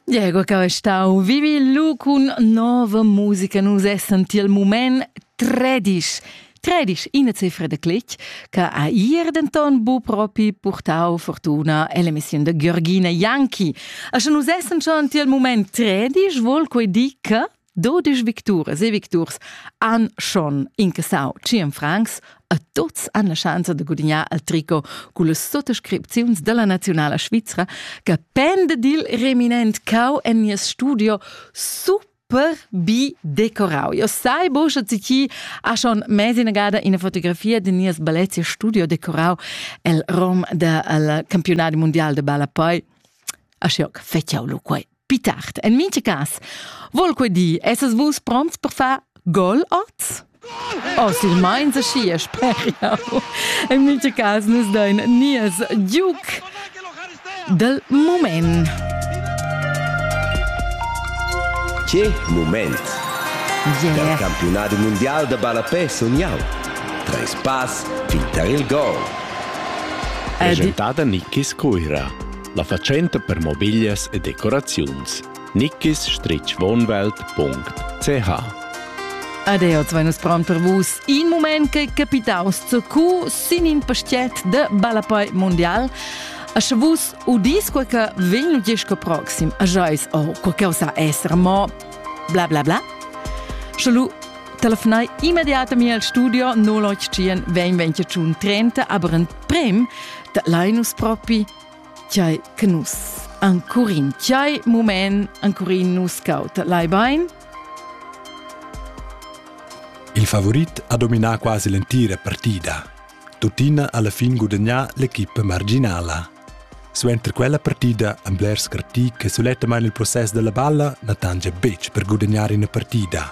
Diego che è stau vivi lu cun nova musica nus essan tiel mument 13 13 ina cifra de clic che ha ier denton bu propi purtau fortuna ell'emissione de Georgina Janki. A sche nus essan schon tiel mument 13 vol quei di che Dodisch victuras e victurs han schon incassau tschien francs a tuts han la schanza da gudignar al tricot cun las suttascripziuns dalla nazionala svizra che penda dil reminent cau en nies studio super per bi decorau. Io sai buca che chi ha schon mesi nagada ina fotografia de nies ballezie studio decorau el rom del campionat mondial de balla poi. Ashoc feciau lu quei. Pi tard, en mintga cas, vol quei di esses vus pronts per far gol oz? Oh, silmeins aschi speriau. En mintga cas nus dein nies giuc del moment. Che moment! Yeah. Dal campionado mondial da ballapè sun jau. Treis pass fintar il gol. Presentada Niki Scuira. La fatschenta per mobiglias e decoraziuns nickisstrichwohnwelt.ch Adeot vai nus pron per vus. In moment che capitaus zur cu sin in pastiet de ballapoi mondial. A sche vus udis quel che vegn gisco proxim, a jois oh, quel che sa essere mo bla bla bla. Schalu telefonai immediatamente al studio 081 20 30 aber ein prem da Linus propi, tgei che nus ancurin, tgei mument ancurin nus caut lai bein? Il favorit ha dominà quasi l'entira partida. Tuttina alla fin gudagnà l'equipa marginala. Suenter quella partida han blers critiche che suletta man il process della balla na tange betg per gudagnare una partida.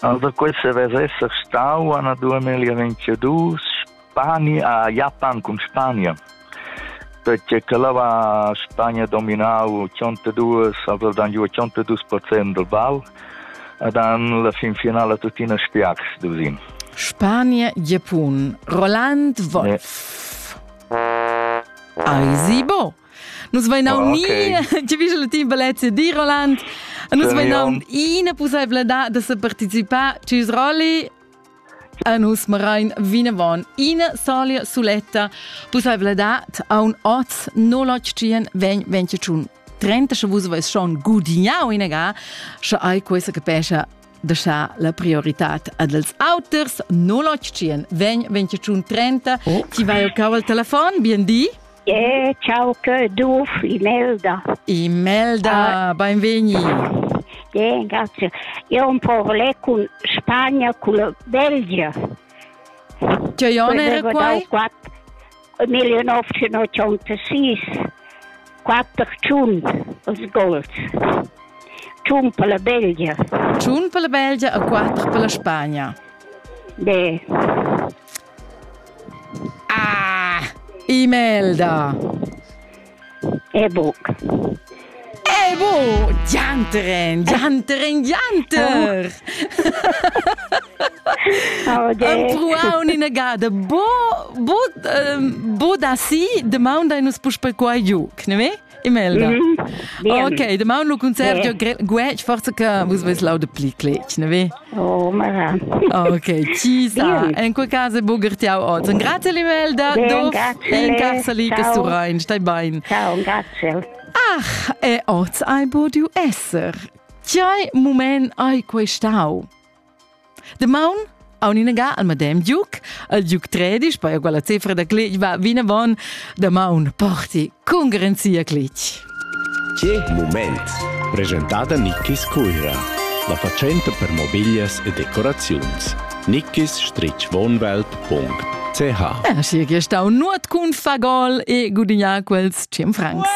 Alura quel savess esser stau anadua meglier venciadurs. Spania ha Japan cun Spania. Perché che là va Spagna dominau 82, aveva dan giù 82% del ball ed han la finfinala tuttina spiax dusin. Spania, Japan, Roland Wolf. Yeah. Eisi bo! Nus vainaun oh, okay. ni giavischel il team Balezia di Roland. Nus vainaun ina pussebladad da se participar cis rally a nus marain vinavon ina solia suletta pussebladad a un oz 081 vegn 25 30 sche vus vais schon gudignau ina ga sche ai questa capescha da scha la priorità ad els auters 081 vegn 25 30 ti vai au al telefon bien di Eh, ciao che Duf, Imelda. Imelda, ah. benvegni. Bien, grazie. Io un po' parlé con Spagna, con la Belgia. Ti hai onere qua? 1986, 4 Giun als Gols. Giun per la Belgia. Giun per la Belgia e 4 per la Spagna. Beh. Ah, Imelda! E buc. E bu, gianteren, gianteren, gianter! Am pruau nina gada, bo, bo, bo da si, de maun dai nus puspel qua giu, ne me? Imelda. Mm -hmm. Ok, de maun lu concert jo guec forza che vus ves laude pli clec, ne vi? Oh, mara. Ok, ci sa. En quel caso buger ti au oz. Grazie Imelda. Du en carsali che su rein. Stai bein. Ciao, grazie. Ach, e oz ai bodu esser. Chai mumen ai questau? Damaun aun inaga al madem Duc, al Duc Tredisch, poi quella cifra da clic va vinavon, damaun porti con garanzia clic. Che moment! Presentata Nickis Cuira, la facenta per mobiglias e decoraziuns. nickis-wohnwelt.ch Ah, schi, che stau nuot cun fagol e gudignar quels 100 francs.